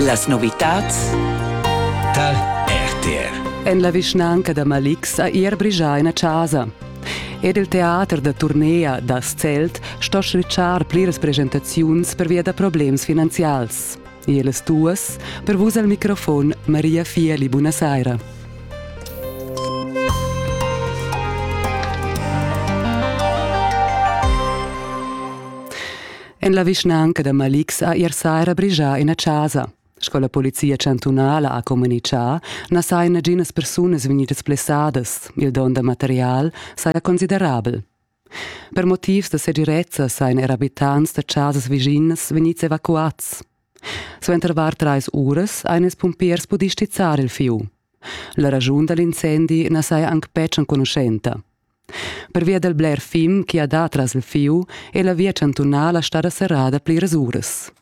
Las novitads tar RTR. En la vischnanca da Malix ha ier brigià ina chasa. Ed il teater da turnea das Zelt sto schritschar pliras presentaziuns pervia da problems finanzials. E las duas per vus al microfon Maria Fieli, buonasera. En la vischnanca da Malik sa ier saira brigia ina chasa. Sco la polizia chantunala ha communitgà, na sajan naginas persunas vegnidas blessadas. Il don da material saja considerabel. Per motivs da segirezza sajan er abitants da chasas viginas vegnids evacuads. Suenter var trais uras han ils pumpiers pudì stizzar il fieu. La raschun da l'incendi na saja anc betg enconuschenta. Pervia dal bler fim chi ha dat tras il fieu è la via chantunala stada serrada pliras uras.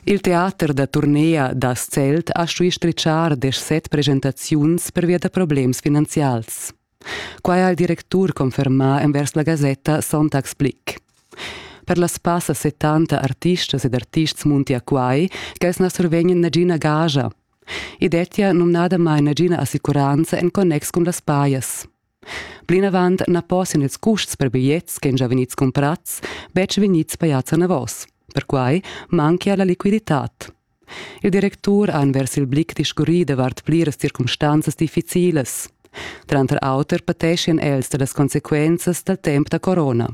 Il teater da turnea da Zelt ha stuì strichar deschset presentaziuns pervia da problems finanzials. Quai ha il directur confermà envers la gasetta Sonntagsblick. Per las passa 70 artistas ed artists munti a quai ch'els na survegnan nagina gaja I dettia numnadamain nagina assicuranza en connex cun las pajas. Plinavant na possian ils custs per bigliets che gia vegnids cumprads betg vegnids pajads anavos. Perquai manchia la liquiditad. Il directur ha envers il blick discurrì davart pliras circumstanzas difficilas. Tranter auter pateschian els da las consequenzas dal temp da corona.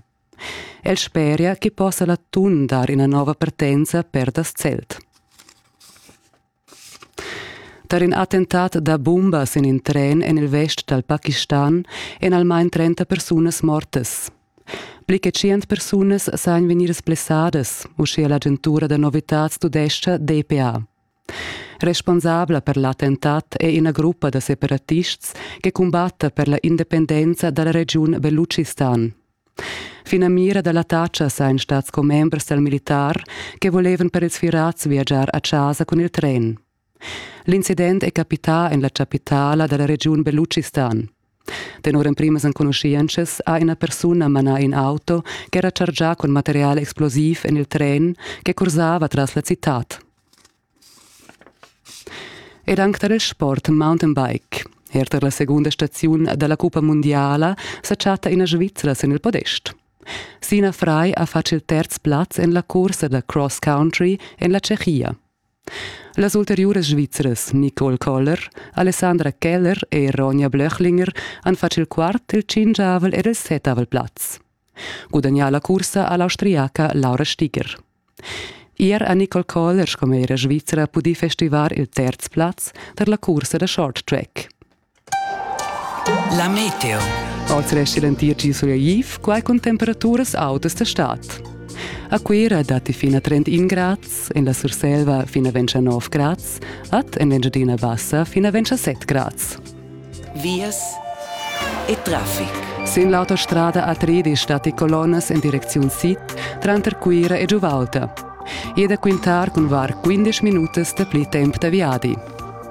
El speria che possa l'atun dar ina nova partenza per das Zelt. Tar in attentat da bumbas en in tren en il vest dal Pakistan èn almain 30 persunas mortas. Pli che 100 persunas sajan vegnidas blessadas, uschia l'agentura da novitads tudescha DPA. Responsabla per l'attentat è ina gruppa da separatists che cumbatta per la independenza dalla regiun Beluchistan. Finamira da l'attacca sain stats commembers dal militar che volevan per ils firats viagiar a casa cun il tren. L'incident è capità en la chapitala dalla regiun Beluchistan. Tenor emprimas enconuschientschas ha ina persuna manà in auto ch'era chargià cun material explosiv en il tren che cursava tras la citad. Ed anc tar il sport mountainbike. Er tar la segunda staziun da la cuppa mundiala sa chatta ina Svizra sin il podest. Sina Fry ha fatg il terz plaz en la cursa da cross country en la Tschechia. Las ulteriuras Svizras Nicole Koller, Alessandra Keller e Ronja Blöchlinger han fatg il quart, il tschingiavel ed il setavel plaz. Gudagnà la cursa ha l'austriaca Laura Stiger. Ier ha Nicole Koller sco mera svizra pudì festivar il terz plaz tar la cursa da short track. La meteo. Oltre a essentir gi sureiv, quai cun temperaturas autas da stad. A Cuira datti fin a 31 grads, en la Surselva fin a 29 grads, ad en l'Engiadina Bassa fin a 27 grads. Vias e traffic. Sin l'autostrada A3 stati colonnas en direcziun sid tranter Cuira e Giuvalta. E da quintar cun var 15 minutas da pli temp da viadi.